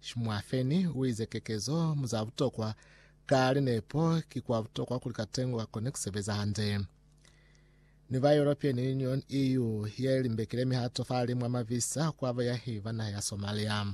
Shimwafeni uize kekezo mu za butokwa ka linepo ki kwa butokwa kuli katengo kakone kusebeza hande. Ni ba European Union, EU, ye limbekile mihato fahali mwa mavisa kwa bayahi ba naha ya Somalia.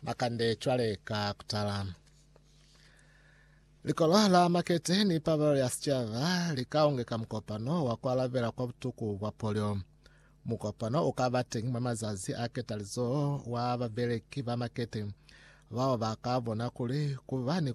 Makande cwale ka kutala. Likolo la makete ni pabalelo ya sichaba likaongeka mukopano wa kualabela kwa butuku bwa polio. Mukopano u ka ba teñi mwa mazazi a ketalizoho wa babeleki ba makete, bao ba ka bona kuli ku ba ni,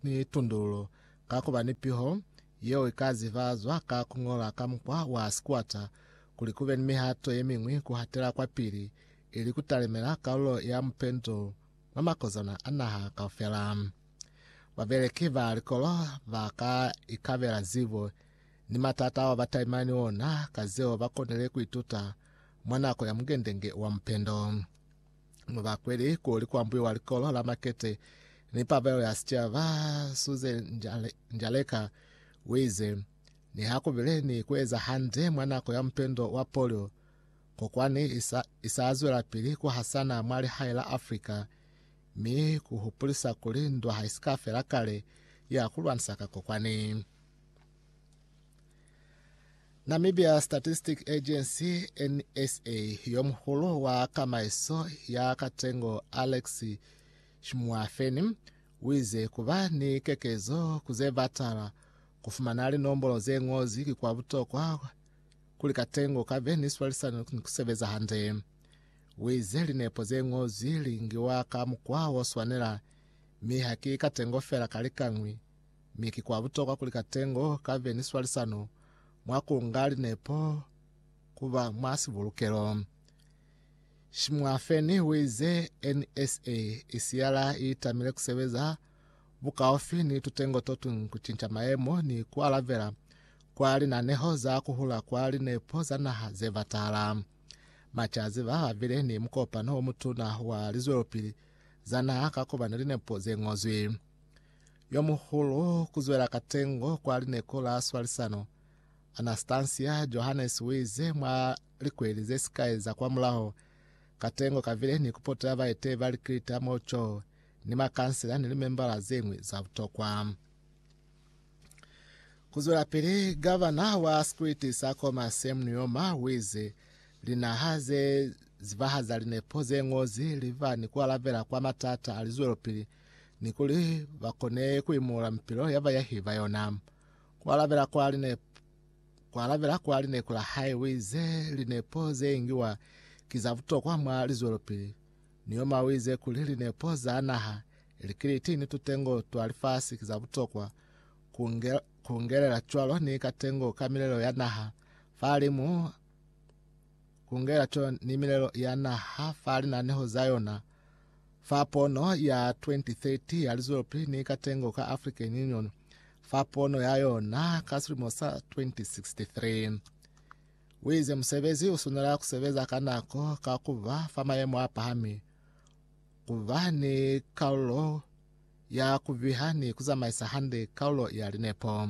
ni tundululo ka ku ba ni piho yeo i ka zivazwa ka ku ñola ka mukwa wa sikwata, kuli ku be ni mihato ye miñwi ku hatela kwapili, ili ku talimela kalulo ya mupendo mwa makozana a naha kaufela. Babeleki ba likolo ba ka ikabela zibo ni matata ao ba talimana ni ona ka zeo ba konile ku ituta mwa nako ya mungendenge wa mupendo. Mu ba kweli kuli ku ambuiwa likolo la makete ni pabelo ya sicaba. Suze Njaleka u ize, Niha ku bile ni ku eza hande mwa nako ya mupendo wa polio, kokwani i sa zwelapili ku hasana mwa lihae la Afrika, mi ku hupulisa kuli ndwa ha i si ka fela kale ya ku lwanisa ka kokwani. Namibia Statistic Agency, NSA, yo muhulu wa kamaiso ya katengo Alex Shmuafeni wize kuba ni kekezo kuze batala kufumana linombolo ze ngozi ki kwa butokwa kuli katengo kabe ni swalisano ni kusebeza hande. Wize linepo ze ngozi lingiwa ka mukwa oswanela mi haki katengo fela kalikangwi Mi ki kwa butokwa kuli katengo kabe ni swalisano mwa kunga linepo kuba mwa sibulukelo. Shimwafeni uize NSA isiyala iitamile kusebeza bukaufi ni tutengo totuñwi kucinca maemo ni kualabela kwa linaneho za kuhula kwa linepo za naha zebatala. Macazi ba babile ni mukopano omutuna wa lizwelopili za naha ka kuba ni linepo zengozwi. Yomuhulu kuzwela katengo kwa lineko la swalisano, Anastasia Johannes uize mwa likweli zesikai za kwamulaho, katengo kavile ni kupotela baeteyi ba likilita mo Chou ni makansela ni limembala zeñwi za butokwa. Kuzwelapili, gavana wa sikwiti sa Koma Sam Nujoma uize linaha ze zibahaza linepo zeñozi liba ni kualabela kwa matata a lizwelopili ni kuli ba kone ku imula mipilo ya bayahi ba yona. Ku alabela kwa linepo, ku alabela kwa linepo la hae o ize, Linepo ze ngiwa ki za butokwa mwa lizwelopili. Neoma o ize kuli linepo za naha, ili kiliti ni tutengo twa lifasi ki za butokwa, ku nge- ku ngelela cwalo ni katengo ka milelo ya naha fahalimu kungela co ni milelo ya naha fa linaneho za yona fa pono ya 2030 ya lizwelopili ni katengo ka African Union fa pono ya yona ka silimo sa 2063. Wize musebezi usunela kusebeza ka nako ka kuba fa mayemo a pahami, kuba ni kaulo ya kuviha ni kuzamaisa hande kaulo ya linepo.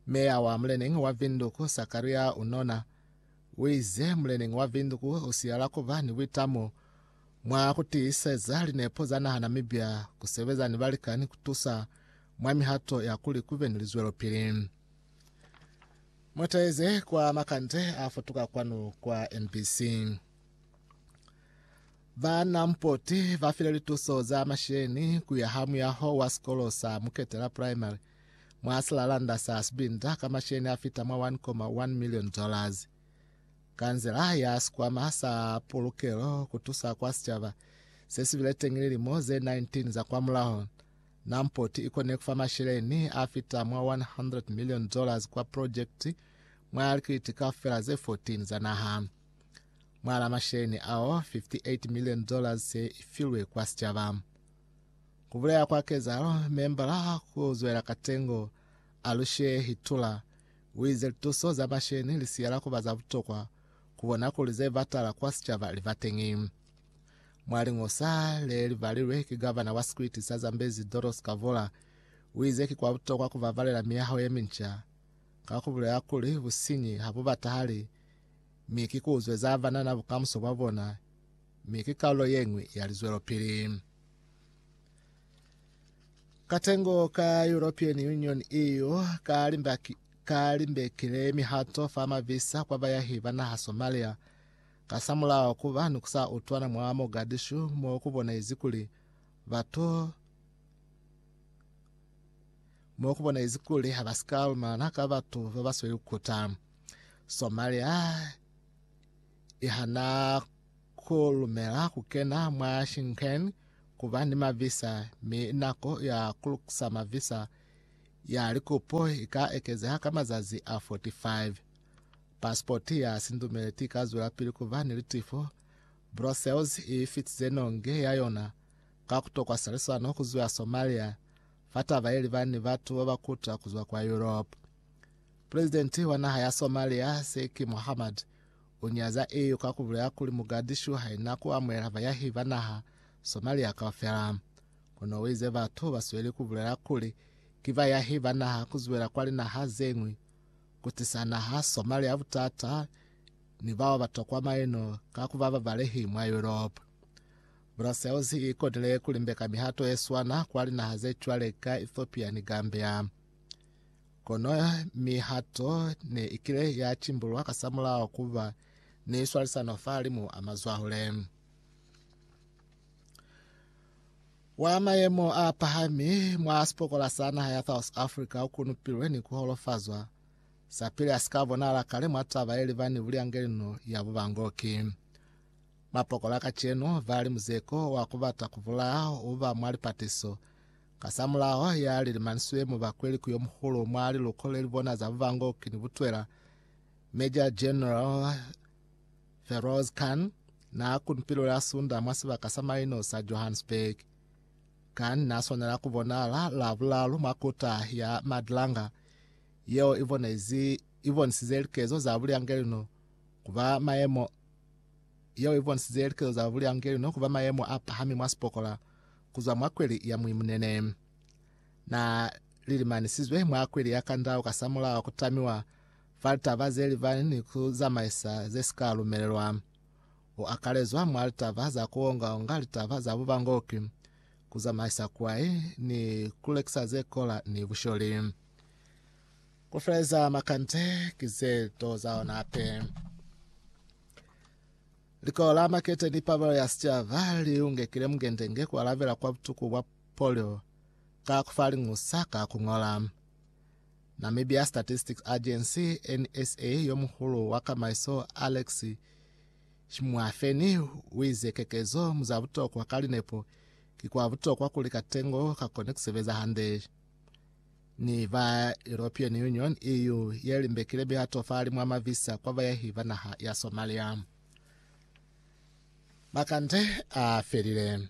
Meya wa Muleneñi wa Vinduku Sakaria Unona Wize muleneñi wa Vinduku usiyala kuba ni buitamo mwa kutiiseza linepo za naha Namibia, kusebeza ni balikani kutusa mwa mihato ya kuli kube ni lizwelopili. Mutaize kwa makande a futuka kwanu kwa MBC. Ba Nampoti bafile lituso za masheni kuya ha muyaho wa sikolo sa Muketela Primary mwa silalanda sa sibinda ka masheni a fita mwa 1.1 million dollars. Kansela ya sikwama sa pulukelo kutusa kwa sicaba se si bile teñi lilimo ze 19 za kwa mulaho, Namport i kone kufa masheleni a fita mwa 100 million dollars kwa projekiti mwa likiliti kaufela ze 14 za naha. Mwa la masheni ao, 58 million dollars se i filwe kwa sicaba. Ku bulela kwa kezahalo, membala ku zwela ka tengo a lu shehitula. U ize lituso za masheni li siyela ku ba za butokwa ku bona kuli ze batala kwa sicaba li ba teñi. Mwa liñosa le li balilwe ki gavana wa sikwiti sa Zambezi Doros Kavula, u ize ki kwa butokwa ku babalela miyaho ye minca, ka ku bulela kuli businyi ha bu batahali mi ki ku zweza banana bukamuso bwa bona. mi ki kalulo yeñwi ya lizwelopili. Katengo ka European Union, EU, ka limbaki ka limbekile mihato fa mavisa kwa bayahi ba naha Somalia kasamulaho kuba ni kusa utwana mwa Mogadishu mo kubonaizi kuli batu mo kubonaizi kuli habasika lumana ka batu babasweli kukuta. Somalia ihana ku lumela ku kena mwa Schengen ku ba ni mavisa mi nako ya ku lukusa mavisa ya likupo i ka ekezeha ka mazazi a 45. Pasipoti ya sindumeleti i ka zwelapili ku ba ni litifo. Brussels i fitize nonge ya yona ka ku tokwa salisano ku zwa Somalia fa taba ye liba ni batu ba ba kuta ku zwa kwa Europe. Pulezidenti wa naha ya Somalia, Sheikh Mohammed, U nyaza EU ka ku bulela kuli Mogadishu ha i na ku amuhela bayahi ba naha Somalia kaufela. Kono u ize batu ba sweli ku bulela kuli ki bayahi ba naha ku zwela kwa linaha ze ñwi, ku tisa naha Somalia butata ni bao ba tokwa maino ka ku ba babalehi mwa Yuropa. Brussels i konile ku limbeka mihato ye swana kwa linaha ze cwale ka Ethiopia ni Gambia. Kono mihato ne i kile ya cimbululwa kasamulaho ku ba ni swalisano fahalimu a mazwahule. Wa mayemo a pahami mwa sipokola sa naha ya South Africa u kunupilwe ni ku holofazwa sapili a si ka bonala kale mwa taba ye liba ni buliangeli no ya bubangoki. Mapokola kacenu ba li muzeko wa ku bata ku bulaya u ba mwa lipatiso Kasamulaho ha ya leli manswe mubakweli ku yomuhulu mwa liluko leli bona za bubango kini butwela, Major General Feroz Khan na kuni pilu la sunda mwa sibaka sa maino sa Johannesburg. Khan na swanela ku bonala la bulalu mwa kuta ya Madlanga yeo i bonisize likezo za bulyangelino ku ba maemo yeo i bonisize likezo za buliangeli ni ku ba mayemo a pahami mwa sipokola ku zwa mwa kweli ya muimunene. Na lilimanisizwe mwa kweli ya kandau kasamulaho ku tamiwa fa litaba ze libani ni ku zamaisa ze si ka lumelelwa. U akalezwa mwa litaba za ku onga-onga litaba za bubangoki, ku zamaisa kwai, ni ku lekisa ze kola ni busholi. Ku feleza makande ki ze to za ona hape. Likolo la makete ni pabelo ya sicaba li ungekile mungendenge ku alabela kwa butuku bwa polio ka ku fa liñusa ka ku ñola. Namibia Statistics Agency, NSA, yo muhulu wa kamaiso Alex Shimwafeni uize kekezo mu za butokwa ka linepo ki kwa butokwa kuli katengo ka kone ku sebeza hande. ni ba European Union, EU, ye limbekile mihato fa limu a mavisa kwa bayahi ba naha ya Somalia. Makande a felile.